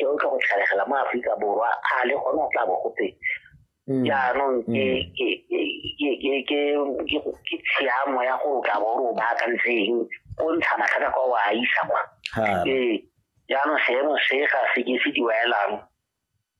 e o tlo go tlhalegela mo aforika borwa a le gone go tla bo gotse mm. jaanong mm. ke tshiamo ya gore o tla bo o re o baakantseng o ntsha matlhaka kwa o a isa kwa ee jaanong seemo se ga se ke se diwaelang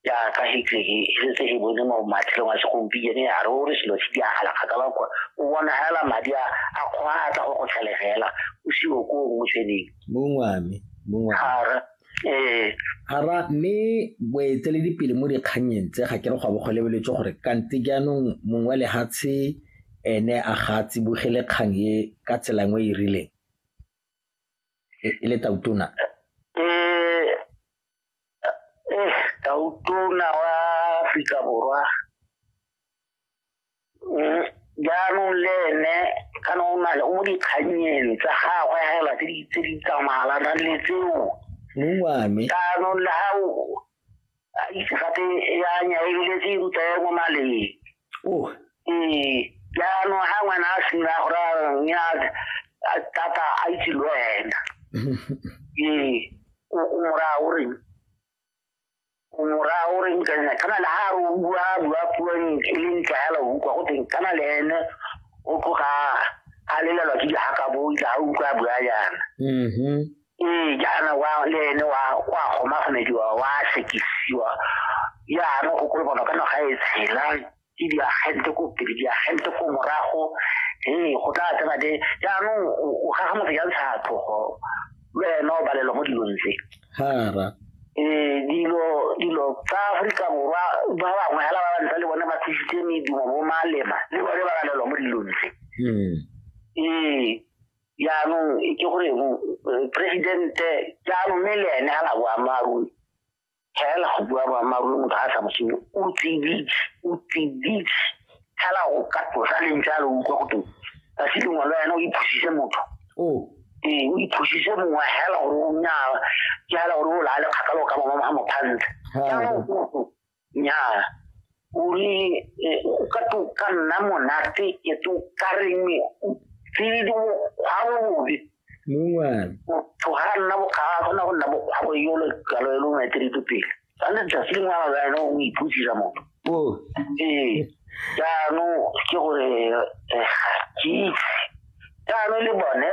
jaaka hitleke e setse e bone mo matshelong a segompieno ya re o re selo se di agala kgakala kwa o bona fela madi a kgwa a tla go go tlhalegela o siwo ko o mo tshweneng mongwame mongwame ee Hara mme boeteledipele mo dikgannyeng tse ga ke re go abo go lebeletswe gore kante jaanong mongwe wa lehatshe ene a ga a tsibogele kgang e ka tsela nngwe e rileng e e le tautona eh eh tautona wa Afrika Borwa jaanong le ene kana o na le o mo dikganyeng tsa gagwe fela tse di tse di tsamayalana le tseo mongwame jaanong le ga o a itse gape ya nya e bile tse ruta ya mo maleng oh ee jaanong ga ngwana a sena gore nya tata a itse le wena ee o mora o reng mora o reng ka nna kana le ha o bua bua puo e leng tlala o utlwa go teng kana le ene o tloga a lelelwa ke dihaka bo itla a utlwa bua yana mm-hmm. ee jaana wa le ene wa wa gomagomediwa wa sekisiwa jaana go kolobana ka naga e tshelang ke diagente ko pele diagente ko morago ee go tla tsena de jaanong o gaga motho ya ntsha tlhogo le wena o balelwa mo dilong tse ee dilo dilo tsa aforika borwa ba bangwe fela ba bantsa le bone ba thusitse medumo bo malema le bone ba balelwa mo dilong tse hmm. ee jaanong ke gore eh, presidente jaanong mme le ene ga la boammaaruri tlhaela go bua boammaaruri motho ga a sa mosenyo o tsiditse o tsiditse tlhaela go ka tlosa leng jalo o utlwa go teng ka se lengwe le wena o iphusise motho ee o iphusise mongwe hela gore o nyaa ke hela gore o laale kgakalo ka bangwe ga mophantle jaanong nyaa o re eh, o ka to ka nna monate e to ka reng o tsedi bokgwa bobe mongwana motho ga a nna bokga a kgona go nna bokgwa bo yolo kalo e longwe tse dito pele sa le tsatsi lengwe a baene o iputsisa motho o ee jaanong ke gore eh, ga ke itse jaanong le bone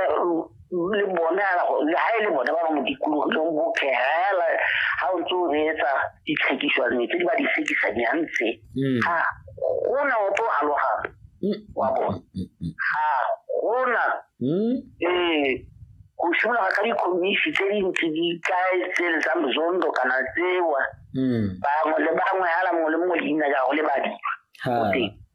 le bone ala go le ha ile bone ba ba mo dikologileng bo khela ha o ntse o reetsa ditlhekiso le tse di ba di sekisa di antse mm. ha go na o tlo aloga mm. wa bo ha go na mm. eh go shuma ka di komisi tse di ntse di kae tse le tsa mzondo kana tsewa bangwe le bangwe ala mo le mo leina ja go le badi ha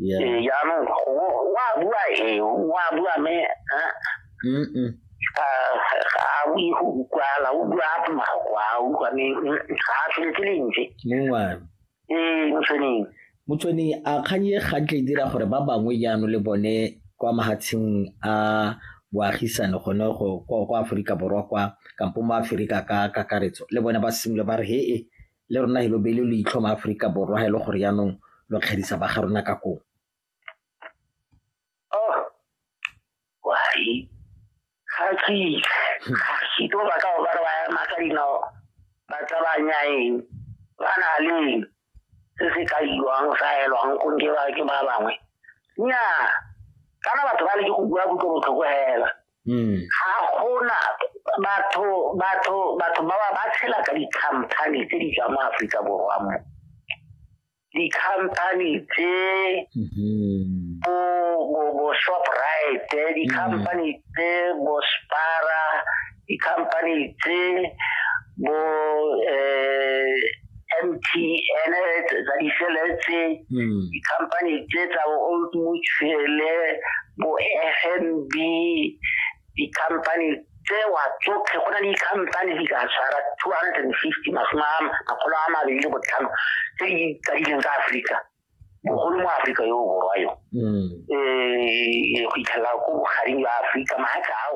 yaanong wa bua e wa bua me ga o ye go ukwala o bua mako a utlwa me ga a tshwele ke lentswe ee motshweneng motshweni a kganye gantle dira gore ba bangwe jaano le bone kwa mahatsheng a boagisane gone go kwa aforika borwa kwa kampo mo aforika ka kakaretso le bone ba simole ba re he e Le rona he lo beile leitlho ma Aforika Borwa ha e le gore yaanong lo kgerisa ba ga rona ka koo. Oh, wari, ga ke ga ke tlo ba ka ba re ba ema ka dinao ba tlabanya eng ba na leng se se ka iwang sa elwang go nke ba ke ba bangwe nnyaa kana batho ba le ke go bua kutlo botlhoko hela Mm. ga gona batho batho batho ba ba ba tshela ka di-company tse di tswa mo aforika borwa mo di-company tse mm-hmm. bo bo bo shoprite di-company mm. tse bo spara di-company tse bo um M_T_N tsa di-cell tse hmm. di-company tse tsa bo old mutual bo F_N_B di-company tsewa tsotlhe go na le di-company di ka tshwara two hundred and fifty masome a makgolo a mabedi le botlhano tse di kadileng ka aforika bogolo mo aforika yo o borwa yo um go itlhelela ko bogareng jwa aforika maaka ao